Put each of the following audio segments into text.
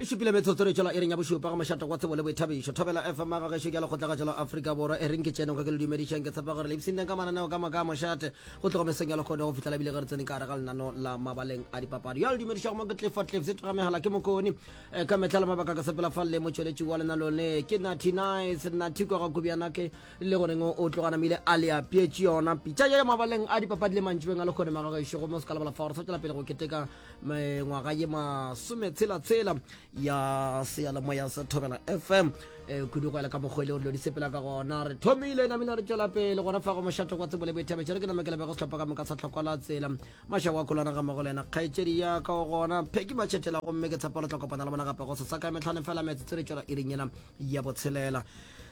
e šupile metsotso re tšwela e reng ya bošupa ga mošata kwa tsebo le boithabišo thobela fm ga gešo ke ya lekgotlagatšo la aforika borwa e reng ke tšene go ke le dumedišang ke tshepa gore le ipsinteng ka mananeo ka moka a mošate go tlogo mesong ya lekgodo go fitlhela ebile ge re tsene ka gare ga lenano la mabaleng a dipapadi ya le dumedišago mo ke tlefa tlef se tloga megala ke mokone eh, ka metlha le mabaka ka sepela fa le motšweletši wa lena lone ke nathy nice nathy kwa ga kubiana ke le goreng o tloganamile a le apietše yona pitša ya mabaleng a dipapadi le mantšibeng a lekgone maga gešo go mo se ka lebala fa gore sa tšwela pele go keteka ngwaga ye masome tshela tshela ya seyalemoya sa thobela fm eh, kudu go ela ka mokgwa e le gore lo di sepela ka gona re thomile namina re tšwela pele gona fa go mošato kwa tsebole boithabetšere ke namekela bego setlhopha ka moka sa tlhokwa la tsela mašako a kolwana ga mogo le yena kgaetšedi ya ka go gona pheki matšhetela gomme ke tshepa le tla kopana le bona gape go sesaka metlhane fela metsotso re tšwela iring yena ya botshelela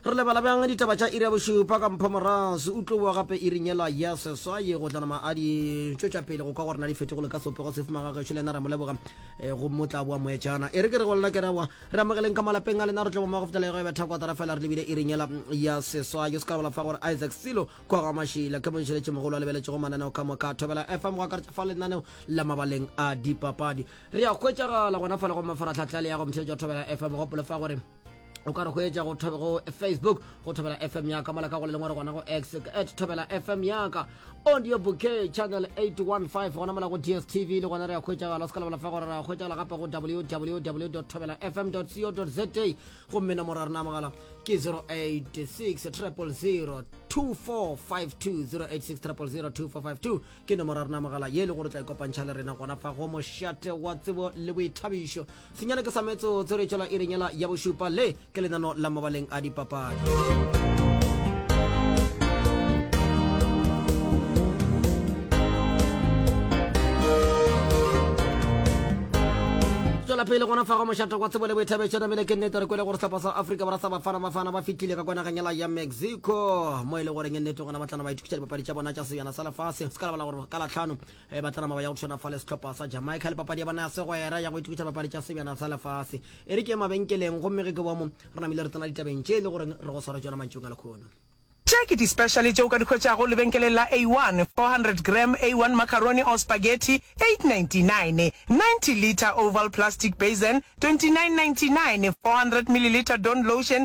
Re lebala bjang ditaba tša iri ya bošupa? Ka mpho Morase o tlo boa gape iring yela ya seswaye go tla nama a di tšwetša pele go kwa gore na di fetogole ka sepego sefe magagešo le yena ra mo leboga eh, go mo tla boa moetšana e re ke re go lena ke raboa re amogeleng ka malapeng a lena re tlo bomago fetela ya go ebetha kwatara fela re lebile iring yela mm, ya seswaye o se ka bola fa gore Isaac Silo kwa ga mašila ke monšeletše mogolo a lebeletšego mananeo ka moka thobela FM go akaretša fa lenaneo la mabaleng a dipapadi re ya hwetšagala gona fa le go mafaratlhatlha le ya go mtheletša thobela FM gopole fa gore o ka re go etša go facebook go thobela fm yaka mola ka go le lengwe re gona go x at thobela fm yaka audio bouquet channel 815 gona mola go dstv le gona re ya kgwetšagala o se ka lebala fa gore re ya kgwetšagala gape go www thobela fm co za gomme nomoro ya rena mogala ke 086 000 2452 086 000 2452 ke nomoro ya rena mogala ye e le gore tla ikopantšha le rena gona fa go mošate wa tsebo le boithabišo Senyane ke sa metsotso re tšwela iring yela ya bošupa le ke lenano la mabaleng a dipapadi. tswela pele gona fa go mošata kwa tsebo le boithabetšo namele ke nnete re kwele gore sepa sa afrika borwa sa bafana bafana ba fitlhile ka kwanaganyela ya mexico mo e le goreng nnete gona batlana ba ithutisa dipapadi tša bona tša sejana sa lefase se ka lebala gore ka latlhano Ge ba tla nama ba ya go tshwana fa le sehlopha sa Jamaica le papadi ya bona ya segwera ya go itukiša papadi tša sebjana sa lefase e re ke mabenkeleng gomme ge ke boa mo re namile re tsena ditabeng tše e le gore re go swara tšona mantšung a lekhono. Tše ke di-specially tše o ka di hwetšago lebenkeleng la A1, 400 gram A1 macaroni or spaghetti, 8.99, 90 litre oval plastic basin, 29.99, 400 milliliter Dawn lotion,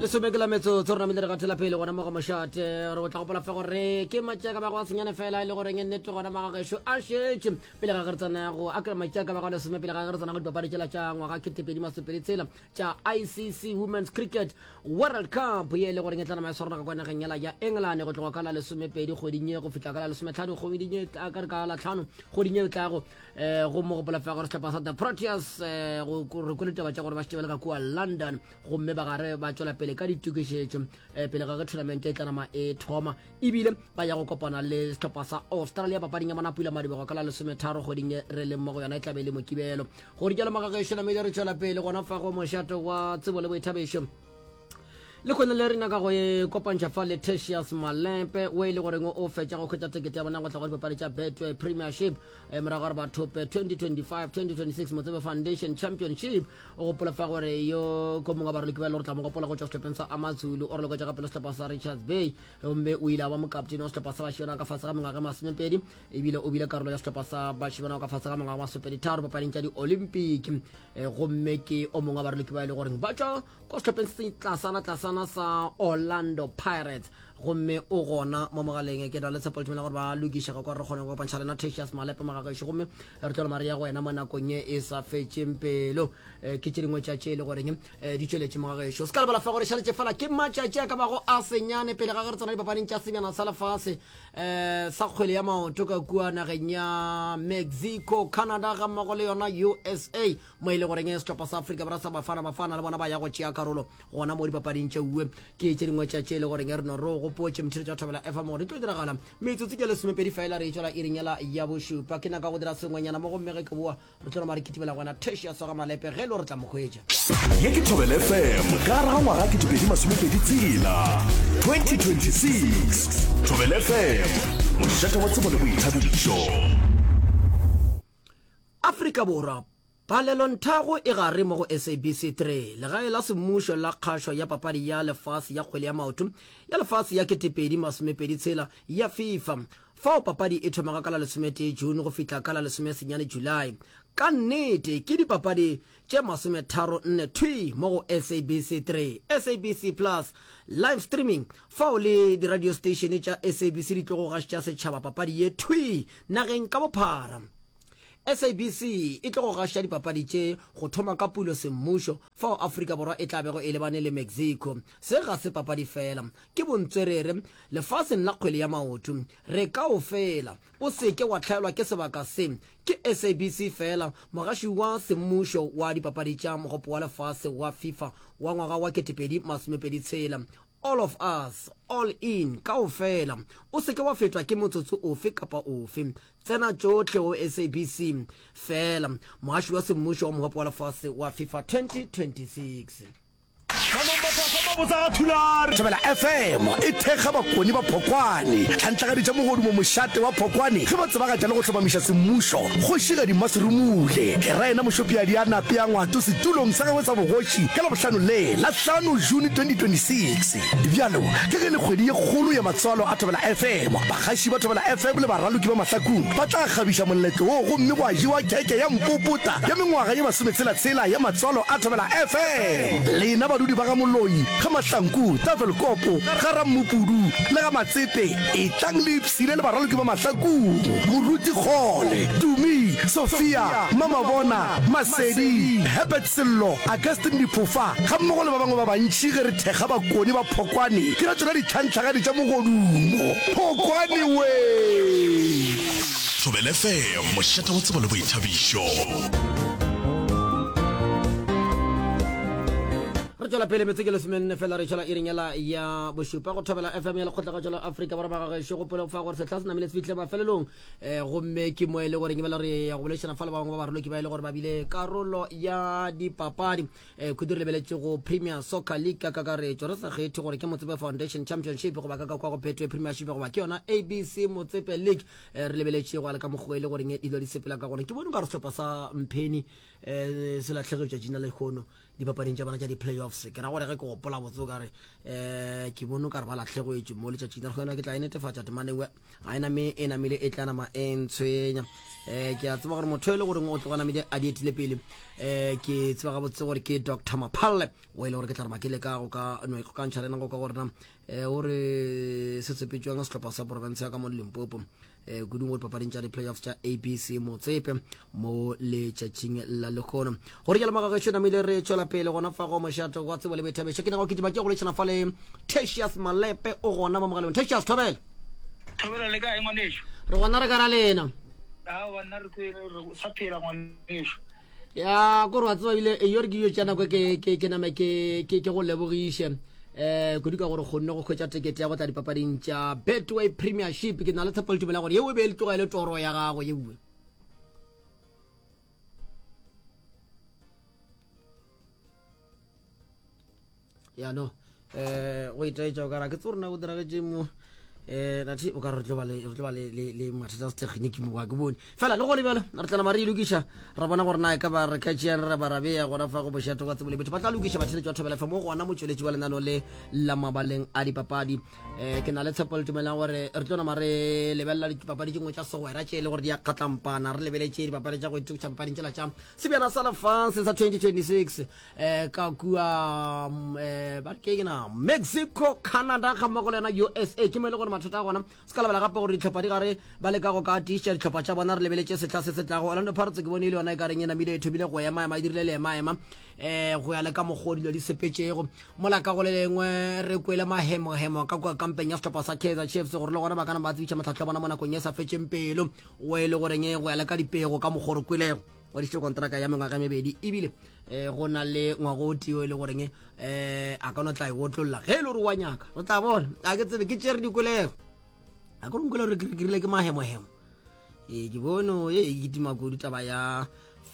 lesome ke la metsotso re namile re gathela pele gona mo go mošate gore o tla gopola fe gore ke matšaka ba go a senyane fela e le goreng e nnete gona magagešo a šetše pele ga geretsana go akra matšaka ba go lesome pele ga geretsana go dipapadi tšela tša ngwaga ketepedi masopedi tsela tša icc women's cricket world cup ye e le goreng e tla nama ya swarana ka kwa nageng yela ya england go tloga ka la lesomepedi kgweding ye go fihla ka la lesometlhano kgweding ye ka re ka la tlhano kgweding ye e tlago um go mo gopola fela gore setlhopha sa the proteas um re kwele taba tša gore ba šetebele ka kua london gomme ba gare ba tšwela pele ka ditokišetšo um pele ga ge tournament e tlanama e thoma ebile ba ya go kopana le setlhopha sa australia papading ya bona pula madibego ka la lesometharo kgweding e re leng mo go yona e tlabe le mokibelo go di jalo magagešo namedi re tšwela pele gona fa go mošato wa tsebo le boithabišo le kgone le rena ka go e kopantšha fa le tertius malepe o e le goreng o fetša go kgwetsa tekete ya bona go tla go dipapadi tša betway premiership e morago gore bathope 2025-2026 motsebe foundation championship o gopola fa gore yo ko mongwe wa baroloki ba e le gore tla mo gopola go tšwa sehlopheng sa amazulu o roloketša gape le sehlopha sa richards bay gomme o ile a ba mokaptene wa sehlopha sa bašona ka fase ga mengwaga masomepedi ebile o bile karolo ya sehlopha sa bašemana ka fase ga mengwaga masopeditharo papading tša di-olympic um gomme ke o mongwe wa baroloki ba e le goreng ba tšwa ko sehlopeng se tlasana tlasana sa orlando pirates gomme o gona mo mogaleng ke na le tshepo letumela gore ba lokišega kwa re kgone go kopantšha lena tasius malepe mogagešo gomme re tlo lemare ya go wena mo nakong e e sa fetšeng pelo eh, ke tše dingwe tša tše e le goreng eh, di tšweletše mogagešo se ka lebala fa gore šaletše fela ke matšatši a ka bago a senyane pele ga ge re tsena dipapading tša senyana sa lefase eh, sa kgwele ya maoto ka kua nageng ya mexico canada ga mmogo le yona usa mo e le goreng eh, setlhopha sa afrika borwa sa bafana bafana le bona ba ya go tšea karolo gona mo dipapading tše uwe ke tše dingwe tša tše e le goreng eh, re no re o gopotše motho tša thobela fm gore di tlo diragala metsotsi ke lesomepedi fela re e tswela iringela ya bošupa ke naka go dira sengwenyana mo gomme ge ke boa re tlo roma re kitimela gona thesho ya swara malepe ge e le re tla mokgwetša ye ke thobele fm ka raga ngwaga ke topedi masomepedi tsela 2026 thobele fm mošate wa tsebo le boithabišo afrika borwa palelonthago e gare mo go sabc 3 legae la semmušo la kgašo ya papadi ya lefase ya kgwele ya maoto ya lefase ya ketepedi masomepedi tshela ya fifa Fao papadi e thomago ka la lesometee June go fihla ka la lesomesenyane July. Ka nnete, ke dipapadi tše masometharo nne thwi mo go SABC 3, SABC Plus, live streaming, fao le diradiosteišene tša SABC di tlogo gašetša setšhaba papadi ye thwi nageng ka bophara. SABC e tlogo gašetša dipapadi tše go thoma ka pulo semmušo fao Afrika Borwa e tla bego e lebane le Mexico. Se ga se papadi feela, Ke bontswerere lefaseng la kgwele ya maoto. Re kaofela. O se ke wa hlaelwa ke sebaka se. Ke SABC feela, mogaši wa semmušo wa dipapadi tša Mogopo wa Lefase wa FIFA wa ngwaga wa 2026. All of us, all in, kaofela. O se ke wa fetwa ke motsotso ofe kapa ofe. Tsena tšohle go SABC feela, mogaši wa semmušo wa Mogopo wa Lefase wa FIFA 2026. Thobela FM e thekga bakoni ba Phokwane, tlhantlagadi tša mogodumo mošate wa Phokwane ge ba tsebagatša le go hlomamiša semmušo Kgošigadi Maserumule Leraena Mošopiadi a nape a ngwato setulong sa gagwe sa bogoši ka Labohlano le la hlano June 2026. Bjalo ka ge e le kgwedi ye kgolo ya matswalo a Thobela FM, bagaši ba Thobela FM le baraloki ba mahlakung ba tla kgabiša moletlo wo gomme gwa jewa keke ya mpopota ya mengwaga ye masometshela-tshela ya matswalo a Thobela FM. Lena badudi ba ga Moloi, ga Mahlanku, Tafelkop, ga Rammopudu le ga Matsete, etlang le ipshine le baraloki ba Mahlakong, Moruti Kgole, Tumi, Sophia, Mamabona, Masedi, Herbert Sello, Augustine Diphofa gammogo le ba bangwe ba bantši ge re thekga bakoni ba Phokwane ke ra tšona ditlhantlhagadi tša mogodumo. Phokwane wee! Thobel FM, mošate wa tsebo le boithabišo. re tswela pele metse ke lesomenne fela re tšhela iringela ya bošupa go thobela fm ya lekgotla ka tšwela afrika borwa magagešo go pele fa gore setlha se namile se fitlhe mafelelong um gomme ke mo e le gore kebela re ya go bolešana fa le ba bangwe ba baroloki ba e le gore ba bile karolo ya dipapadi um eh, khudu re lebeletse go premier soccer league ka kakaretso re sa kgethe gore ke motsebe foundation championship goba ka ka kwa go phetwe premiership goba ke yona abc motsepe league eh, re lebeletše go aleka mokgwa e le goreng dilo di sepela ka gona ke bone ka re sehlopha sa mpheni um se latlhege tšatši na lekgono dipapading tša bona tša di-playoffs ke ra gore ge ke gopola botse o kare um ke bone ka re ba latlhegoetše mo letšatšing la gona ke tla e netefatša temanewe ga e name e namele e tla nama e ntshwenya um ke a tseba gore motho e le goreng o tloga namele a di etile pele um ke tseba gabotse gore ke doctor maphalle o e le gore ke tla re makele ka go ka no ikgokantšha le nako ka gorena eh, o re se tsepetšwang sehlopha sa porofense ya ka mo limpopo um eh, kudung gore papading tša di-playoffs tša abc motsepe mo letšatšing la lekgono gore jalo magagešo namile re tšwela pele gona fa go mošato wa tsebo le boithabeša ke nago kitima ke go letšhana fa le tatius malepe o gona mo mogaleng tatius thobela thobela le kae ngwaneso re gona re ka ra lena awa nna re sa phela ngwaneso ya kore wa tseba bile eyo re ke dilo tša nako ke name ke go lebogiše um eh, kudu ka gore kgonne go kgwetsa tekete ya go tla dipapading tša betway premiership ke na le tshepo letumela gore yeo e be e le tloga e le toro ya gago yeue ya no eh go itaetša o kara ke tse rona go diragetše mo um eh, nathi o ka re tlo ba le mathata a setlhegeniki mo ke bone fela le gone bjalo re tlana mare e lokiša ra bona gore na e ka ba re catšeang re ba rabeya gona fa go bošato kwa tsebole betho ba tla lokiša batheletši ba thobela fa mo gona motšweletši wa lenano le la mabaleng a dipapadi um ke na le tshepo le tumelang gore re tlo nama re lebelela dipapadi tše ngwe tša segwera tše e le gore di a kgatlampana re lebeletše dipapadi tša go itokisa papading tsela tša sebjana sa lefase sa 2026 eh ka kua mm, eh ba ke na Mexico Canada ga mmogo le yona USA ke mo e le gore mathata a gona se ka lebala gape gore ditlhopha di gare ba leka go ka tiiša ditlhopha tša bona re lebeletše setlha se se tlago Orlando Pirates ke bone e le yona e ka reng e namile e thomile go ema ema e dirile le ema ema eh go ya le ka mokgwa o dilo di sepetšego mola ka go le lengwe re kwele mahemohemo ka kua kampeng ya setlhopha sa Kaizer Chiefs gore le gona ba kana ba tsebiša matlhatlho a bona mo nakong e sa fetšeng pelo o e le goreng e go ya le ka dipego ka mokgwa o re kwelego ngwadišitše kontraka ya mengwaga mebedi ebile um go na le ngwago o tio e le goreng um eh, a ka no tla e otlolola ge e le gore wa nyaka o tla bona a ke tsebe ke tšere dikolego a ke rongkole gore ke rile ke mahemohemo ee ke bono e e kitima kudu taba ya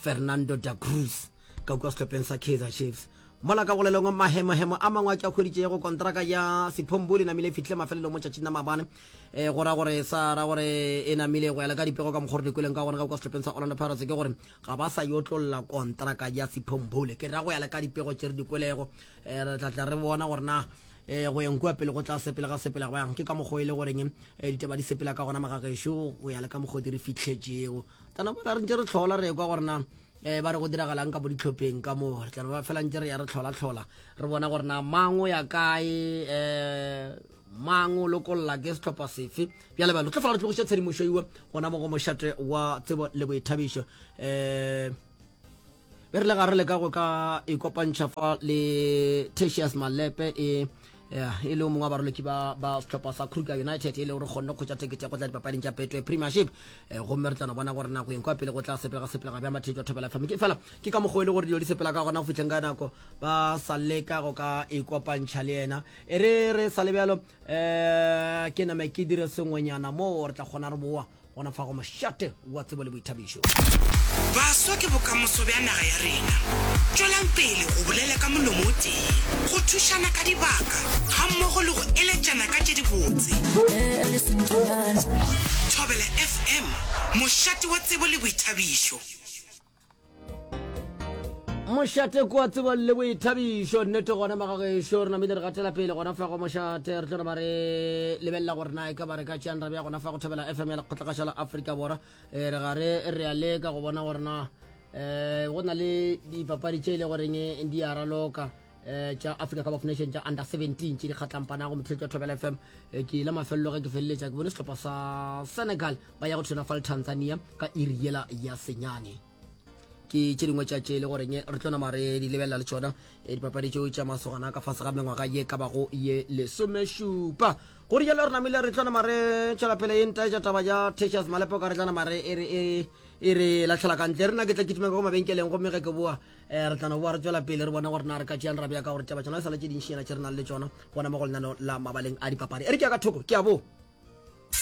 fernando da cruz ka kua setlhopheng sa kaizer chiefs mola ka golelong mahemohemo a mangwe a ke a kgweditšego kontraka ya sephombole namile e fitlhile mafelelo mo tšatšing la mabane e go ra gore sa ra gore e namile go ya le ka dipego ka mokgwa gore dikweleng ka gona ka kwa setlhopheng sa orlando pirates ke gore ga ba sa yo tlolola kontraka ya sephombole ke ra go ya le ka dipego tše re dikwelego eh, re tlatla re bona gore na eh, go yeng kua pele go tla sepele ga sepela go yang ke ka mokgwa e le goreng eh, ditaba di sepela ka gona magagešo go ya le ka mokgwa di re fitlhetšego tana bona re ntse re tlhola re kwa gore na eh ba re go diragalang ka bo ditlhopheng ka moo re tla ba fela ntse re ya re tlhola tlhola re bona gore na mango ya kae eh mang o lokolla ke setlhopha sefe bjale bjalo tlo fela re tlogiša tshedimošo iwe gona mo go mošate wa tsebo le boithabišo um be re le ga re leka go ka ikopantšha fa le tatius malepe e e le o mongwe wa baroloki ba ba setlhopha sa kruger united e le gore kgonne kgotsa tekete ya go tla dipapading tša petwe premiership eh, gomme re tlano bona gore nako eng kwa pele go tla sepelega sepelega bja matheto thobela famike fela ke ka mokgwa e le gore dilo di sepela ka gona go fitlheng ka nako ba sa leka go ka ikopantšha le yena E re re sa le bjalo um ke name ke dire sengwenyana moo re tla kgona re boa gona fa go mošate wa tsebo le boithabišo. Baswa ke bokamoso bja naga ya rena. Tšwelang pele go bolela ka molomo o tee, go thušana ka dibaka gammogo le go eletšana ka tše dibotse. Thobela FM, mošate wa tsebo le boithabišo. mošate kwa tsebo le boithabišo nnete gona magagešo re namile re gatela pele gona fa go mošate re tlo ba re lebelela gore na e ka ba re ka tšeang rabe ya gona fa go thabela fm ya lekgotlagaša la aforika borwa eh, re gare re a leka go bona gore na um go na le dipapadi tše e le goreng di a raloka eh tša africa cup of nation tša under 17 tše di kgatlampanago motlhelo tša thobela fm eh, ke ile mafelelo ge ke feleletša ke bone setlhopha sa senegal ba ya go thona fa le tanzania ka iri yela ya senyane ke tše dingwe tša tše e le goreng re tlo nama re di lebelela le tšona eh, dipapadi tšeo tša masogana ka fase ga mengwaga ye ka bago ye lesomešupa go rialo re namile re tlo nama re tšwela pele e nta tša taba ya tesias malepo ka re tla nama re e re e re latlhela kantle re na ke tla kitima ka go mabenkeleng gomme ge ke boa um re tla no boa re tswela pele re bona gore na re ka tšeang rabja ka gore taba tsona e sale tše dintšhinyana tše re nang le tsona gona mo go lenano la mabaleng a dipapadi e re ke ya ka thoko ke a bo